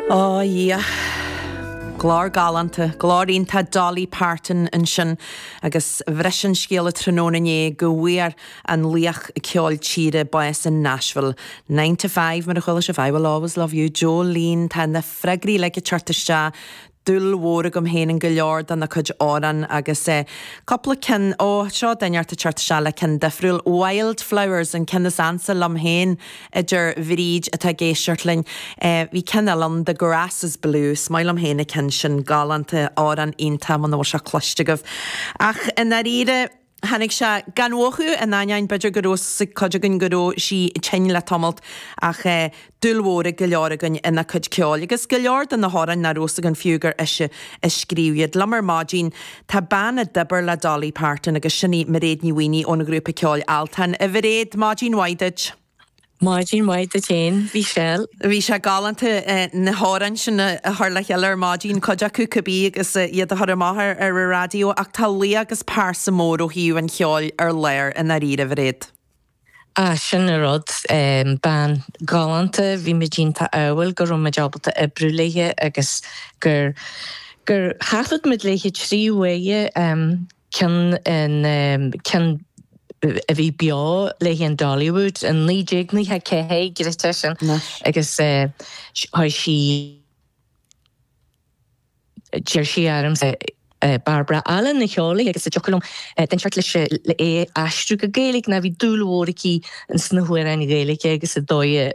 Ó, a Dhia! Glór galánta, glór iontach Dolly Parton ansin agus bhris an scéala tráthnóna inné go bhfuair an laoch ceoil tíre bás in Nashville. Nine to Five, mar a chuala sibh, I Will Always Love You, Jolene, tá na freagraí uilig ag teacht isteach dúil mhór agam féin in go leor dena cuid amhrán agus eh, cúpla ceann, ó, seo duine inteacht ag teacht isteach le ceann difriúil, Wild Flowers, an ceann is ansa liom féin a deir Bríd atá ag éisteacht linn. Eh, bhí ceann eile ann, The Grass is Blue, is maith liom féin an ceann sin, galánta, amhrán iontach, muna bhfuil sé cloiste agaibh. Ach i ndáiríre. Tháinig sé gan mhothú, in ainneoin b'fhéidir go raibh 's ag cuid againn go raibh sí tinn le tamalt, ach dúil mhór ag go leor againn ina cuid ceoil, agus go leor de na hamhráin nach raibh 's againn fiú gur ise a scríobh iad. Liom ar maidin tá bean a d'oibir le Dolly Parton agus sin í Mairéad Ní Mhaonaigh ón ghrúpa ceoil Altan. A Mhairéad, maidin mhaith duit. Maidin mhaith duit fhéin Mhichelle. Bhí sé galánta na hamhráin sin a chur le chéile ar maidin, cuid acu cibé agus iad a chur amach ar an raidió ach tá laoch agus pearsa mór ó thaobh an cheoil ar lár i ndáiríre, a Mhairéad. Ah sin an rud, bean ghalánta, bhí muid iontach ádhúil go raibh muid ábalta oibriú léithe agus gur gur thaifead muid léithe trí huaire. Ceann an ceann a bhí beo léi in Dollywood in 1994 gcreidfeá sin agus chuir sí d'iarr sí orm Barbara Allen a cheol léi agus an dtiocfadh liom duine inteacht leis é a aistriú go Gaeilge ná bhí dúil mhór aici sna hamhráin Ghaeilge agus an dóigh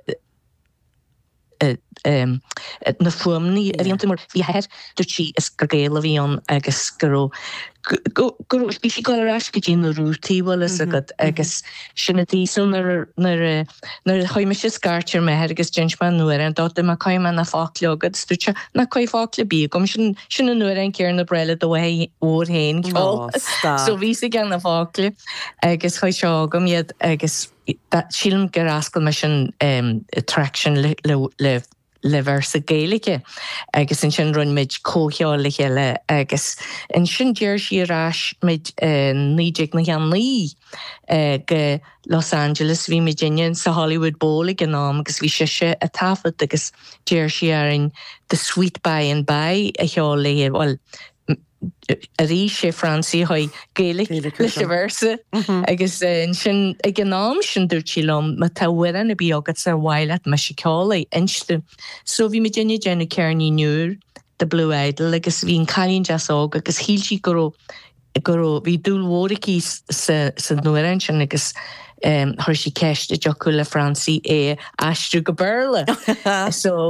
na fuaimeanna a bhí iontu mar bhí a hathair dúirt sí is gur Gael a bhí ann agus go raibh go raibh bhí sí ag gabháil ar ais go dtí na rútaí bhfuil 's agat agus sin a dtí so nuair nuair nuair chuir mise scairt ar m'athair agus d'inis mé an amhrán dó dúirt mé caithfidh mé na focla chugat is dúirt sé ná caith focla ar bith chugam sin sin an amhrán céanna ab fhearr le do mháthair mhór fhéin ceol so bhí 's aige na focla agus chuir sé chugam iad agus Sílim gur fhoscail mise an traic sin le véarsa Gaeilge agus ansin rinne muid comhcheol le chéile agus ansin d'iarr sí ar ais muid i 1999 go Los Angeles. Bhí muidinne sa Hollywood Bowl ag an am agus bhí sise a' taifead agus d'iarr sí orainn The Sweet Bye and Bye a cheol léi. Bhuel N, Arís sé Francie a chuir Gaeilge leis an véarsa agus ansin ag an am sin dúirt sí liom, má tá amhrán ar bith agatsa ar mhaith leat mise ceol air, inis domh. So bhí muid ag déanamh ceirnín úr, The Blue Idol, agus bhí An Cailín Deas Óg agus shíl sí go raibh, go raibh, bhí dúil mhór aici sa, san amhrán sin agus chuir sí ceist, an dtiocfadh le Francie é a aistriú go Béarla. So.